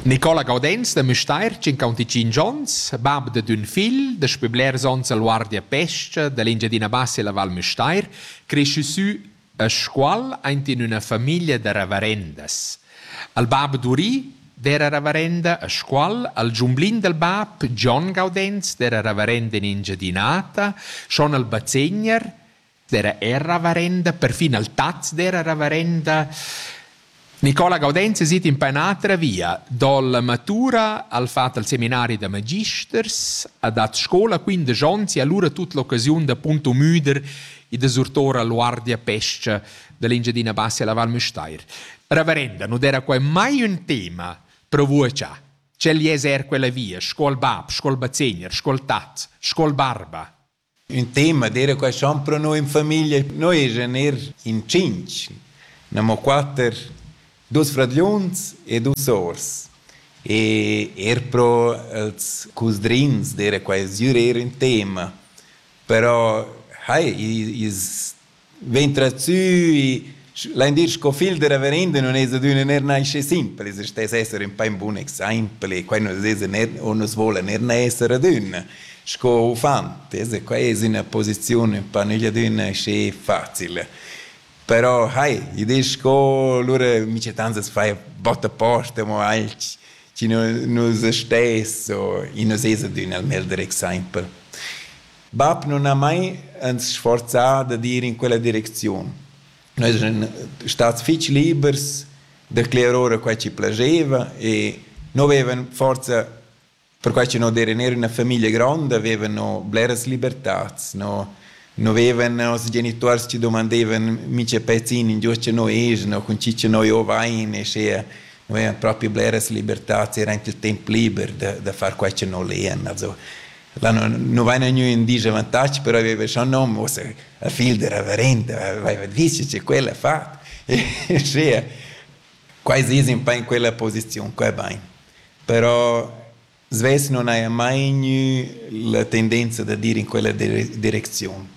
Nicola Gaudenz da Müstair, 55 onns, bab da d'ün figl, daspö blers ons al Guardia Pescha da l'Engiadina Bassa e la Val Müstair, creschü sü a Scuol aint in üna famiglia da ravarendas. Al bab Duri d'era ravarenda a Scuol, al giumblin dal bab Gian Gaudenz d'era ravarenda in Engiadinata, schon al bazegner dera era ravarenda, perfin al taz dera ravarenda. Nicola Gaudenz sit in pa un'altra via, dalla matura al fat al seminari da magisters, ha dat scola 15 onns e allora tut l'occasiun da punto müder e da surtora l'uardia pesca dell'Engiadina Bassa alla Val Müstair. Ravarenda, non era qua mai un tema per voi già. Cel es er quella via, scuol bab, scuol bazegner, scuol tat, scuol barba. Ün tema d'eira qua schon pro noi in famiglia. Noi eschan eir in tschinch, gnammo quatter, duos fradgliuns e duos sors. E eir pro els cusdrins d'eira quai sgür eir ün tema. Però hai, ils Vegn trazzui, lain dir sco figl da reverenda nun es adüna neir naschi simpel, es stes esser ün pa ün bun exaimpel e quai nus esa neir o nus voula neir esser adüna sco uffant, es quai es üna posiziun ün pa nügliadüna aschi facil. Però hai, i disch sco, lura micettans as faja botta posta mo alch chi nu nus stes o i nus esa adüna il meglder exaimpel. Bab nun ha mai ans sforzà dad ir in quella direcziun. Noi eschan stats fich libers da cler ora quai chi plascheva e no vevan forsa perquai cha no d'eira neir üna famiglia gronda, vevan no bleras libertats, no no vevan noss genituors chi dumandevan mincha pezin ingio cha no eschan o cun chi cha noi o vain e schea no vevan propi bleras libertats, era aint il temp liber da da far quai cha no lean. Also Là nu vaina gnü ün dis avantag, però aveva scho nom, uossa la figl da reverenda aveva dis che quella ha fat. Sche quai es ün pa in quella posiziun qua bain. Però svess non haja mai gnü la tendenza da dir in quella direcziun.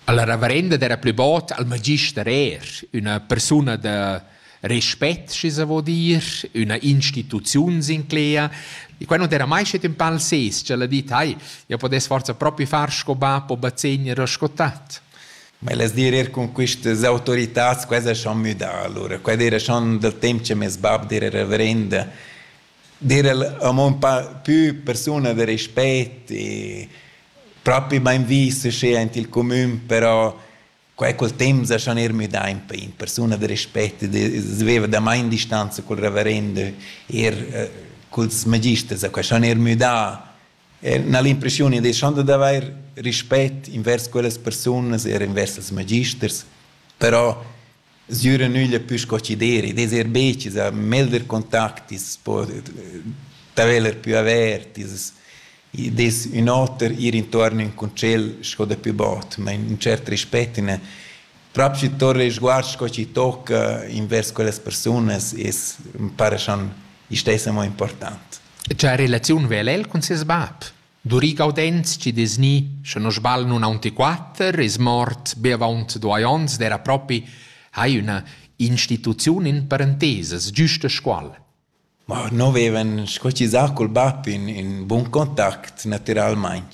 Alla reverenda d'era plü bod al magister eir üna persuna da respect schi sa vo dir üna instituziun sinclea e quai non era mai schet ün pal ses ch'el ha dit hai ja podess forza propi far sco bap o bazegner o sco tat Ma elas dir er cun quistas autoritats quai es schon müdà alura. Quai d'eira schon dal temp cha meis bap d'eira reverenda. D'eira amo ün pa pü persuna da respet e propi bain vis uschè aint il cumün, però Quei cul temps ha schon er müdà in pei in persuna da respect e veva da main distanza cul reverendo er eh, culs magisters, ha schon er müdà na l'impressione di schon da avair rispett invers quellas persunas er invers els magisters, però Sgüra nüglia pü sco chi deri, ed eser be chi sa melder contactis, po d'haveler pü avertis, id es ün oter ir intuorn ün concel sco dapü bod, ma ün tschert respet in el. Prop schi torna il sguard sco chi tocca invers quellas persunas es ün para cha istess amo important. E cha relaziun vela el cun seis bap? Duri Gaudenz chi dess gnir, sche non sbagl, nun aunc quatter, es mort be avaunt duai ons ed era propi hai üna instituziun in parentesas, giusta scuol. Ma no vevan squachisà col bap in, in bun contact natüralmaing.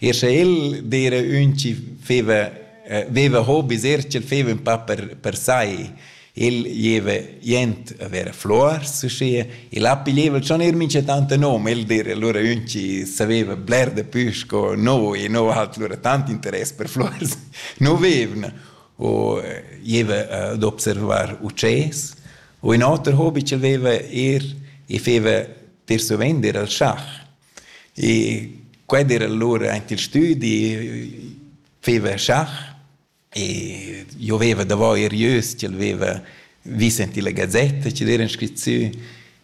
Er sche el d'eira ün chi feva, eh, veva hobis, er ch'el feva ün pa per, per sai. Il gieva jent a ver fluors uschia. Il ha piglieva schon eir mincha tant nom, el dir, lura ün chi saveva bler dapü sco noi e no hat lura tant interess per fluors, no vevna. U gieva ad observar ucès. U ün oter hobi ch'el veva eir, i feva per suvent al schach. E quel era lura aint il stüdi, feva schach E io veva davò er ieus, ch'el veva vis en la gazetta, che era scrit sü.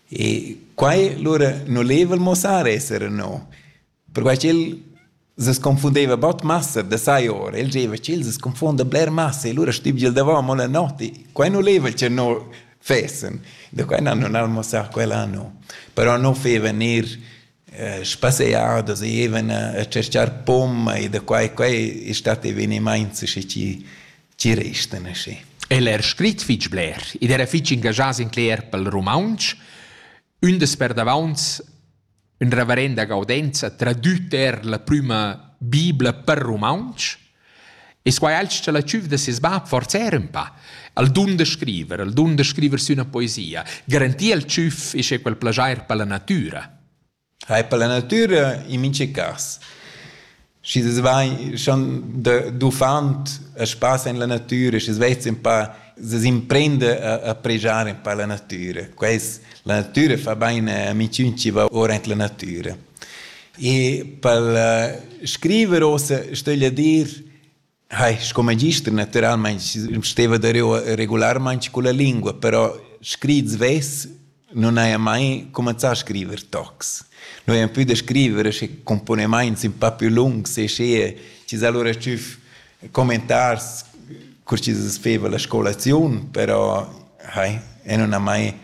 E quai, lura non leva il mossar esser no, perquai ch'el se sconfundeva bot massa da sai ora, el diceva che el se confonda bler massa e lura stibgel davò mo la notte. Quai non leva che no fessen, da quai non han mossar quell'anno, però non feva ner spasear da zievena e tschercar pomma e da quai quai e stat evenimaints aschi chi chi restan aschi. El era scrit fich bler ed era fich ingagià sin cler pel rumauntsch. Ün des perdavaunt ün reverenda Gaudenza tradüt er la prüma bibla per rumauntsch E squai alch cha la tschüf da seis bap forsa era ün pa. El dun da scriver, el dun da scriver sü üna poesia. Garantir al tschüf isch è quel plaschair per la natüra. Hai per la natüra in minche cas. Schi das vai schon de d'uffant a spass in la natüra, schi svets un pa das imprende a, a pregiare un pa la natüra. Quais la natüra fa bain a amiciun chi va ora in la natüra. E pel scriver uossa stögl dir hai sco magister natüralmaing steva dareu regularmaing culla lingua, però scrit svess nun haja mai cumanzà a scriver tocs. Noi hain pü da scriver sche cumponimaints ün pa pü lungs e sche chi s'ha lura tschüf commentars cur chi's feva la scolaziun, però hai e nun ha mai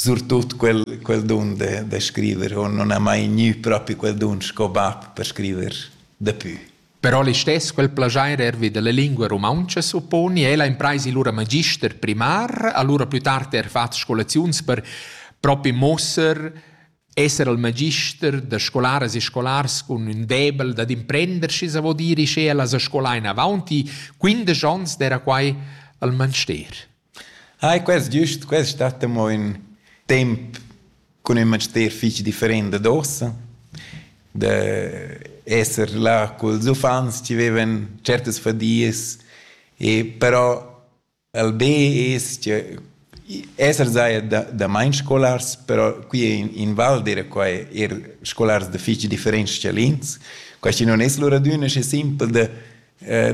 surtut quel, quel dun de, de scriver o non ha mai gnü propi quel dun sco bab per scriver dapü. Però listess quel plagiair ervi della lingua romauncha supponi ella impraisi lura magister primar, allura plü tard er fat scolaziuns per propi mosser esser al magister da scolaras e scolars cun ün debel dad imprender schi sa vo dire sche ella sa scolà in avanti 15 ans d'era quai al manster. Ai, quest giust, quest stat amo ün temp cun ün manster fich different dad uossa. Da esser là culs uffants chi vevan certas fadias, e però al be es che esser saja da damain scolars, però qui in Val d'eira quai eir scolars da fich differents schalins. Quai chi nun es lur adüna schi simpel da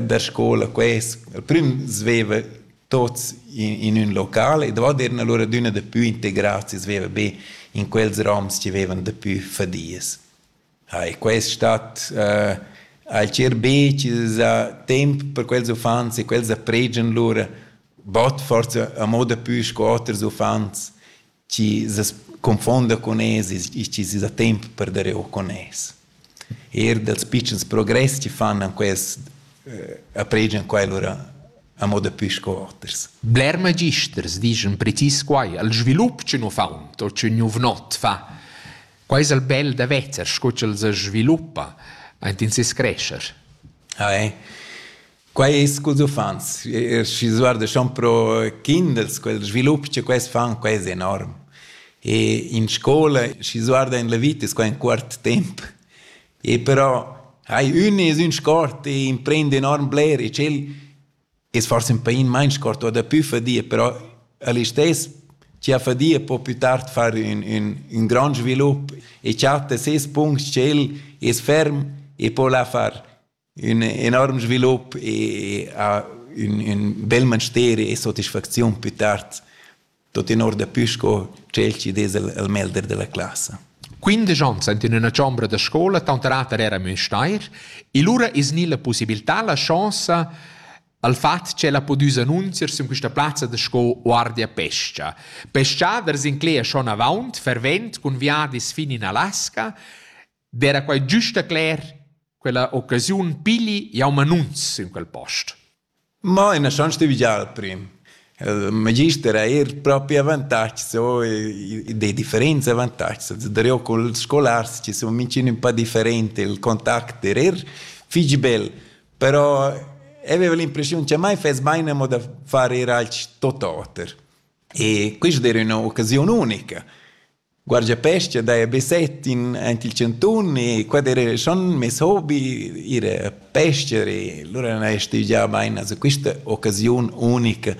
da scola quest al prüm sveva tots in, in ün local ed avant eran allura adüna dapü integrats e sveva be in quels roms chi vevan dapü fadias. Ha, e quest stat uh, alchir be chi za temp per quels uffants e quels appregian lura bod forza a moda pü sco oters uffants chi s'es confonda con es e chi s'es da temp per der eau con es. Eir dals pitschens progress chi fan an quest eh, apregian quai lura a moda pü sco oters. Bler magisters dischan precis quai, al svilup chi nu faun o chi nouv not fa. Quai es al bel da vezer, sco ch'el se sviluppa aint in ses crescher. Ah, eh. Quai es culs uffants. Schi s'guardeschan pro kinders, quel svilup cha quels fan, quai es enorm. E in scoula, schi s'guarda in la vita, es quai ün cuort temp. E però hai ün es ün sport e imprend enorm bler e tschel es forsa ün pain main sport o dapü fadia, però a listess chi ha fadia po plü tard far ün, ün, ün grand svilup e chatta ses punct tschel es ferm e po la far. ün enorm svilup e ha ün, ün bel manster e sotisfacziun più tard tuttenor dapü sco tschel chi dess il, il melder della classa. Quindesch ons ant in üna chombra da scola, tanterater era Müstair, e lura es gnì la possibilità, la chance al fat ch'el ha pudü s'annunzier sün quista plazza da sco guardia pescha. Peschaders incleia schon avaunt, fervent, cun viadis fin in Alaska, D'era quai giusta cler quella occasiun pigli jau manunz in quel post. Ma ina chance de vigiar prim. Il magister ha er propri avantatgs o de differents avantatgs. Darò col scolars che sun mincin un po different, il contact er er fich bel. Però avevo l'impressiun che mai fess bain amo da far er alch tot oter. E questa era üna occasiun unica. Guardiapescha daja be set in aint il chantun e quai d'eira schon meis hobi, ir a pescher e lura n'haja stüdgià bain a quista occasiun unica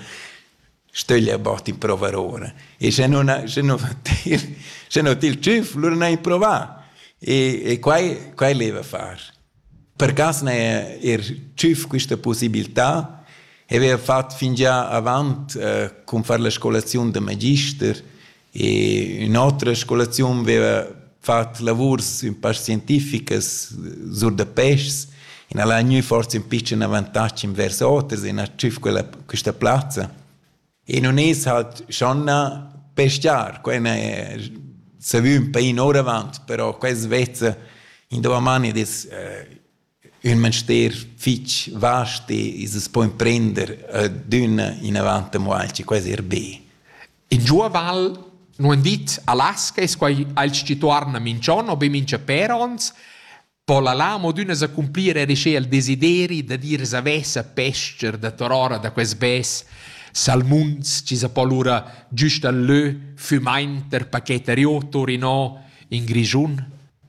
stögl abat impruvar ora e sche nun sche nu fa tir sche no til tschüf lura n'haja improvà e e quai quai leva far. Per cas n'haja eir tschüf quista pussibiltà e vaiva fat fingià avant cun far la scolaziun da magister E ün'otra scolaziun veva fat lavurs ün pa scientificas sur da peschs e n'al ha gnü forsa ün pitschen avantatg invers oters e n'ha tschüf quella, quista plazza. E nun es halt schon na peschiar, quella è savü ün pain ouravant, però quella svezza in dovamani ed es eh, ün manster fich vast e as po imprender adüna inavant amo alch, quai es eir be. In giua val nu han dit Alaska, es quai aint schi tuorna minch'on o be mincha pér ons, po la là amo adüna s'accumplir eir sche el desideri da dir savess a pes-cher da torora da quest bes salmuns chi sa po lura güst al lö fümaint der paquet a Rio Torino in Grischun?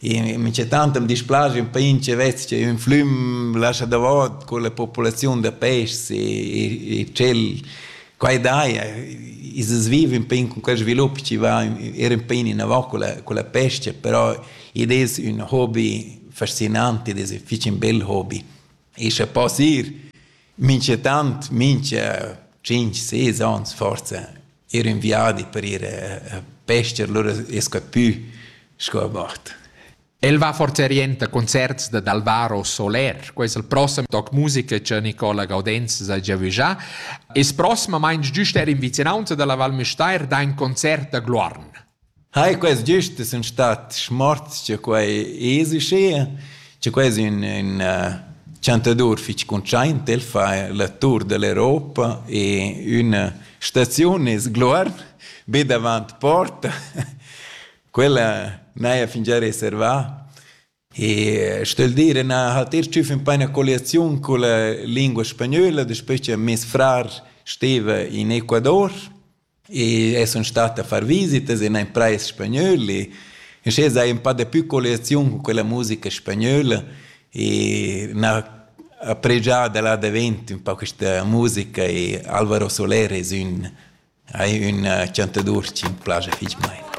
Minchatant am displaja ün pain chi vess sia ün flüm lascha davot culla populaziun da peschs e e tschel quai daja. I es viv ün pain cun quel svilup chi va eir ün pain inavant culla culla pesca, però id es ün hobi fascinant, id es fich ün bel hobi. E scha poss ir minchatant mincha tschinch, ses ans forsa ir in viadi per ir a pester, allora es capü sco a mort. El va forza orienta concerts da d'Alvaro Soler, quais il prossem toc musica che Nicola Gaudenz sa già vigià, es prossimamaing giust er in vicinanza dalla Val Müstair da in concert da Gluarn. Hai, quels giust sun stat smorts cha quai es uschea, cha quai es ün ün chantadur fich cuntschaint, el fa la tour da l'Europa e üna staziun es Gluorn, be davant porta, quella n'haja fingià reservà. E stel dir, na hat er tschüf in paina colliaziun con la lingua spagnola, despe che mes frar steva in Ecuador e es sun stat a far visitas in ein prais spagnöl e e sche sai un pa de più colliaziun con quella musica spagnola e na appregià da là davent un po questa musica e Alvaro Soler es ün hai ün chantadur chi m'piace fich mein.